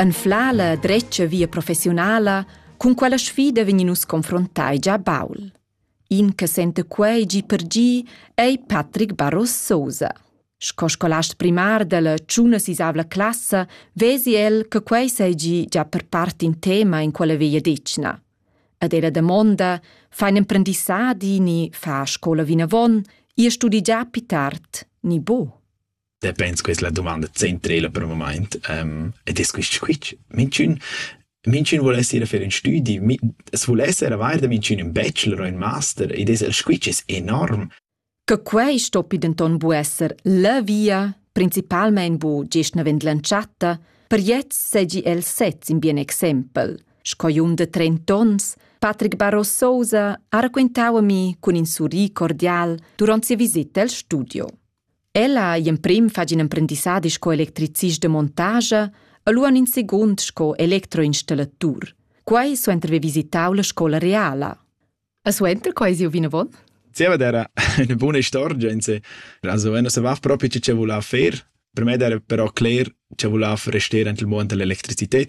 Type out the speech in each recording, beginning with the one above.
Anflar la dretga via professiunala, cun quella sfida vegnin nus confrontai gia baul. In che sente quei gi per gi ei Patrick Barros Sosa. Sco scolast primar dalla tschuna sisavla classa vesi el che quei sei gi già per part in tema in quella veglia decna. Ed era damonda, fa in emprendissadi ni fa scola vinavon, ir studi già più tard, ni bo? Te pens questa la domanda centrela per il moment um, ed è questo squitsch. Minchun Minchün vuol essere fer ün studi, es vuol essere avair da minchün ün bachelor o ün master ed es el squitsch es enorm. Che quei stoppi denton bu esser la via, principalmein bu gest navend l'entschatta, per jetzt segi el sez in bien exempel. Sco jung de 30 ons, Patrick Barros Sousa ha raquentau a mi cun in surri cordial durant sia visita al studio. Ella ei emprim fatg in emprendissadi sco electricist de montagia e lu han in secund sco electroinstallatur. Quei suenter haver visitau la scola reala. E suenter quei siu vinavon? Zieva era una buona istorgenza. Also, wenn se va proprio ce voleva faire, per me era però cler ce voleva restare anche il mondo dell'elettricità.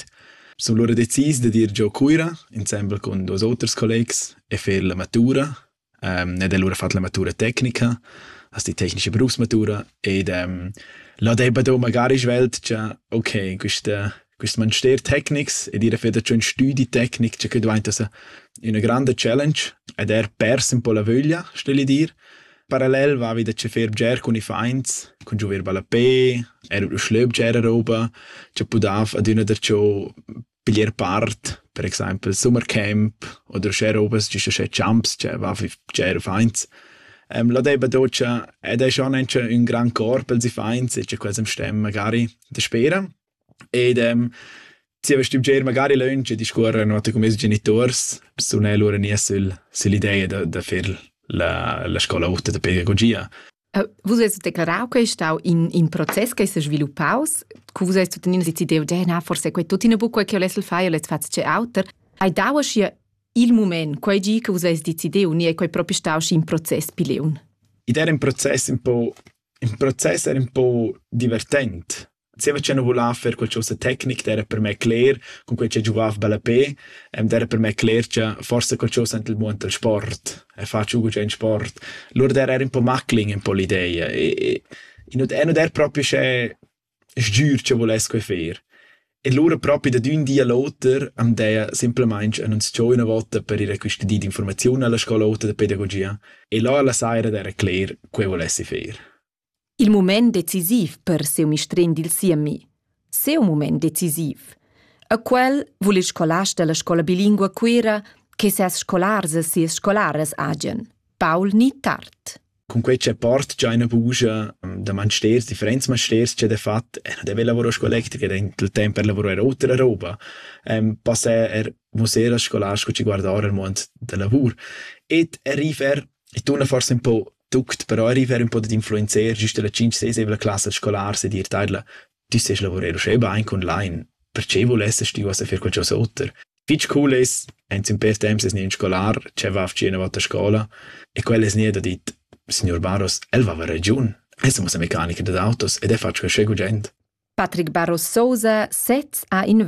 Sono loro decis de dir giò Cuira, insieme con dos oters collegs, e fer la matura. ed el lura fat la matura tecnica, as di tecnica berusmatura ed là daiva do magari svelt cha okay, quista quist manster tecnics ed ir a fer da ün stüdi tecnic cha que dvainta sa üna granda challenge ed er pers ün po la vöglia, steli dir. Parallel vavi da fer bger cun iffaints, cun giover ballapè, eir ün schlöbger e roba, cha pudav adüna darcho Bler part, per exaimpel Summercamp oder scher ovas, gist sche champs, che va bger fains. Ehm, la deiva docia ed è schon anche ün gran cor pels iffaints e cha quels am stem magari daspera. Ed ehm, zieva stüm bger magari lönch e discuorrer note cun meis genituors, sun eu lura gnì sül süll'ideia da da fer la la scola ota da pedagogia. Vus hast declarau che ei stau in, in process che s'è sviluppaus, cu vus hast tuttenina decidiu, na, forse quei tuttina buc quei che volesses fare, volesses far tge auter. Hai dau aschia il mument, quei gi che vus hast decidiu, ni è quei proprio stau schi in process pli leun? Ed era in process un po', in process era un po' divertent. Zieva cha nu vulà fer quel chosa tecnic d'eira per me cler, cunquai cha giuvav ballapè, d'eira per me cler cha forsa qualchosa ant il muond dal sport e faci gugent sport. Lur d'eira eir ün po maclin ün po l'ideia e e nu e nu d'eir propi uschè sgür cha vuless que fer. E lura propi dad ün di a l'oter am deia simplamaing annunzchà üna vota per ir a quista di d'infurmaziun a la scola ota da pedagogia e là la saira d'eira cler che volessi fer. Il mument decisiv per siu mistrin dil siemi. Siu mument decisiv. A quel vul il scolast dalla scola bilingua Cuira che ses scolars e sias scolaras hagen. Paul ni tard. Cun quei che port già ina bugia da mansters, differents mansters che de fat, e de lavoro scolectica dentro il tempo per lavorare otra roba, ehm, passa er musser a scolars che ci guardare il mond del lavoro. Et arriver e tu forse un po' tuct per arriver ün po dad influenzer güsta la cinch sesevla classa scolars ed ir taidla tü sest lavurer uschè bain online perche vulessest tü uossa fer qualchosa oter fich cool es aint ün pêr temps es gnü ün scolar che va fci üna vota a scoula e quel es gnü da dit signor Barros, el vava ragiun. El sa muossa mecanicher dad autos ed è fatg quel sche gugent. Patrick Barros Sousa sez ha in